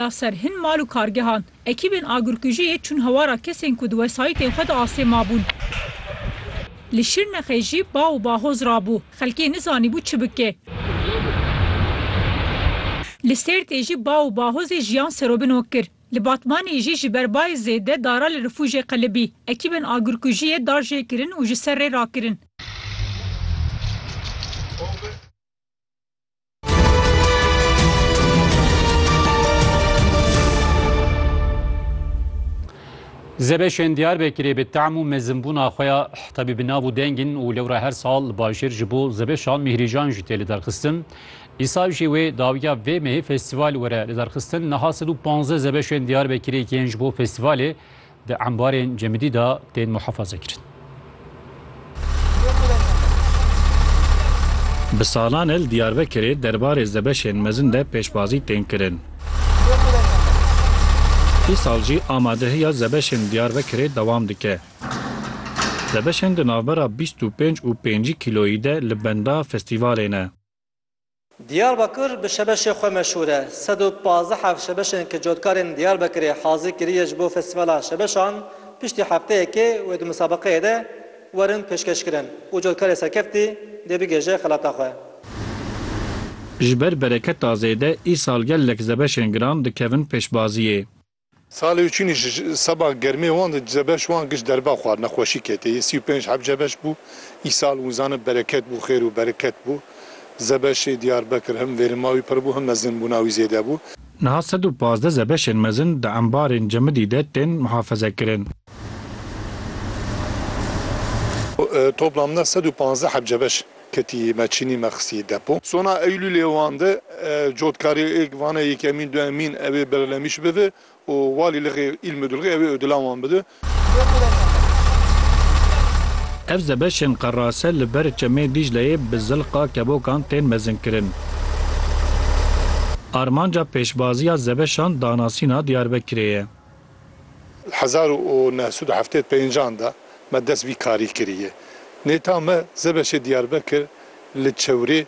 da ser hin mal û kargehan. Ekîbên agirkujiyê çûn hewara kesên ku di wesayîtên xwe de asê mabûn. Li Şirnexê jî bav û bahoz rabû, xelkê nizanîbû çi bike. Li Sêrtê jî bav û bahozê jiyan serobino kir. Li Batmanê jî ji ber bayê zêde dara li rifûjê qelibî. Ekîbên agirkujiyê dar jê kirin û ji ser rê rakirin. Zebeşên Diyarbekirê bi tehm û mezinbûna xwe ya tevî bi nav û deng in û lewra her sal li bajêr ji bo zebeşan mîhrîjan jî tê lidarxistin. Îsal jî wê dawiya vê mehê festîval were lidarxistin. Niha sed û panzdeh zebeşên Diyarbekirê yên ji bo festîvalê Di embarên cemidî de tên muhefazekirin. Bi salan e li Diyarbekirê derbarê zebeşên mezin de pêşbazî tên kirin. Îsal jî amadehiya zebeşên li Diyarbekirê dewam dike. Zebeşên di navbera bîst û pênc û pêncî kîloyî de li benda festîvalê ne. Diyarbakir bi şebeşê xwe meşhûr e. Sed û pazdeh ev şebeşên ku cotkarên Diyarbekirê hazî kiriye ji bo festîvala şebeşan piştî hefteyekê wê di musabeqeyê de werin pêşkeşkirin û cotkarê serkeftî dê bigihêje xelata xwe. Ji ber bereketa zêde îsal gelek zebeşên giran dikevin pêşbaziyê. Salê û çûnî ji seba germê wan de duze beş wan giş derba xwar nexweşî ketê yê sî û pênc hebce beş bû. Îsal wizane bereket bû xêr û bereket bû. Zebeşê Diyarbekir him vêrima wî pir bû him mezinbûna wî zêde bû. Niha sed û pazdeh zebeşên mezin di embarên Cemidî de tên mihafezekirin. Toplamda sed û pazdeh hebce beş. Ketî me çînî me xistî depo. Sona Eylûlê wan de cotkarêk vane yekemîn, duemîn ewê Berlemîş bide û Walî Lixê îl Midulxê ewê Odilan wan bide. Ev zebeşên qerase li ber çemê Dîcleyê bi zilqa kebokan tên mezinkirin. Armanca pêşbaziya zebeşan danasîna Diyarbekirê ye. Di hezar û neh sed û heftê û pênc an de me dest vî karî kiriye. Nêta me Zebeşê Diyarbekir li çewrê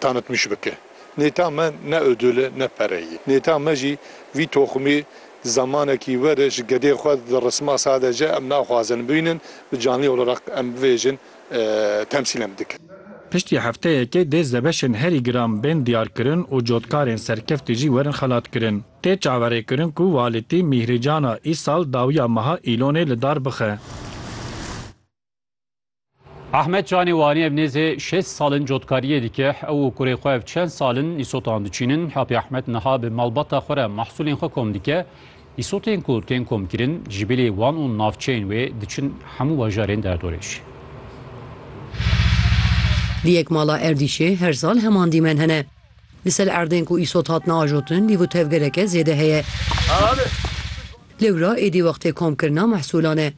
tanitmiş bike. Nêta me ne odul e ne pere ye. Nêta me jî vî toximê zemanekî were ji gedê xwe dirisma sadece em naxwazin bînin bi canlî olarak em bivêjin temsîl em dike. Piştî hefteyekê dê Zebeşên herî giran bên diyarkirin û cotkarên serkeftî jî werin xelatkirin. Tê çaverêkirin ku walîtî Mîhrîcana Îsal dawiya meha Îlonê li dar bixe. Ahmet Canê Wanî ev nêzê şêst sal in cotkariyê dike. Ew û kurê xwe ev çend sal in îsotan diçînin. Apê Ahmet niha bi malbata xwe re mehsûlên xwe kom dike. Îsotên ku tên komkirin ji bilê wan û navçeyên wê diçin hemû bajarên derdorê jî. Di yek mala erdîşê her sal heman dîmen hene. Li ser erdên ku îsot hatine ajotin lîvu tevgereke zêde heye. Lewra êdî wextê komkirina mehsûlan e.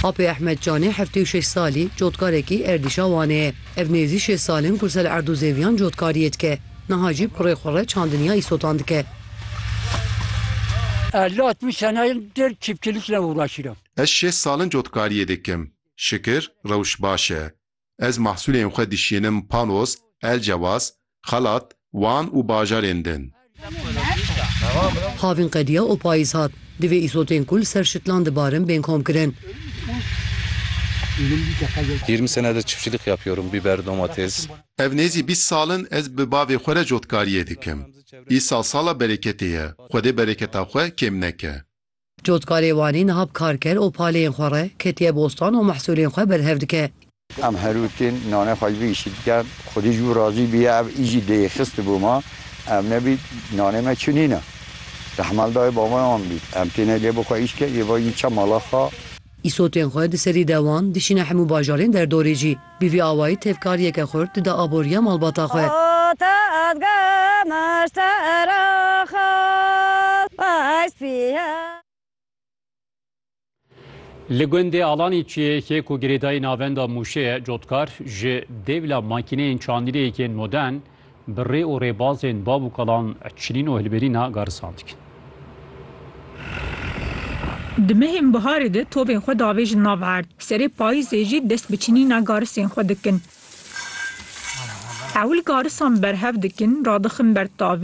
Apê Ehmed Canê heftê û şeş salî cotkarekî erdîşa Wanê ye. Ev nêzî şêst sal in ku ser erd û zêviyan cotkariyê dike. Niha jî pirê xwe re çandiniya îsotan dike. Ez şêst sal in cotkariyê dikim. Şikir rewş baş e. Ez mahsulên xwe dişînim Panos, Elcewas, Xalat, Wan û bajarên din. Havîn qediya û payîz hat. Divê îsotên ku li ser şitlan dibarin bên komkirin. Yirmi senedir çiftçilik yapıyorum, biber, domates. Ev nêzî bîst sal in ez bi bavê xwe re cotkariyê dikim. Îsal sala bereketê ye, Xwedê bereketa xwe kêm neke. Cotkarê Wanê niha bi kar ker û paleyên xwe re ketiye bostan û mehsûlên xwe berhev dike. Em herû tên nanê xwe ji vê îşî dikin. Xwedî ji bo razî biye ev îş jî dê yê xist bo ma. Ev nebît nanê me çi nîne. Rehmel dayê babayan bît. Em têne lê bixwe îş ke yê va yî çe mala xwe. Îsotên xwe di serî dewan dişîne hemû bajarên derdorê jî. Bi vî awayî tevkariyeke xurt dida aboriya malbata xwe. Li gundê Alanî çiyêkê ku girêdayî navenda Mûşê ye, cotkar ji dêvla makîneyên çandîrêyekên modern, Bi rê û rêbazên bav û kalan çilîn û hilberîna garisan dikin. Di mehên biharê de tovên xwe davêjin nav erd, serê payîzê jî dest bi çinîna garisên xwe dikin. Ewil garisan berhev dikin, radixin ber tavê.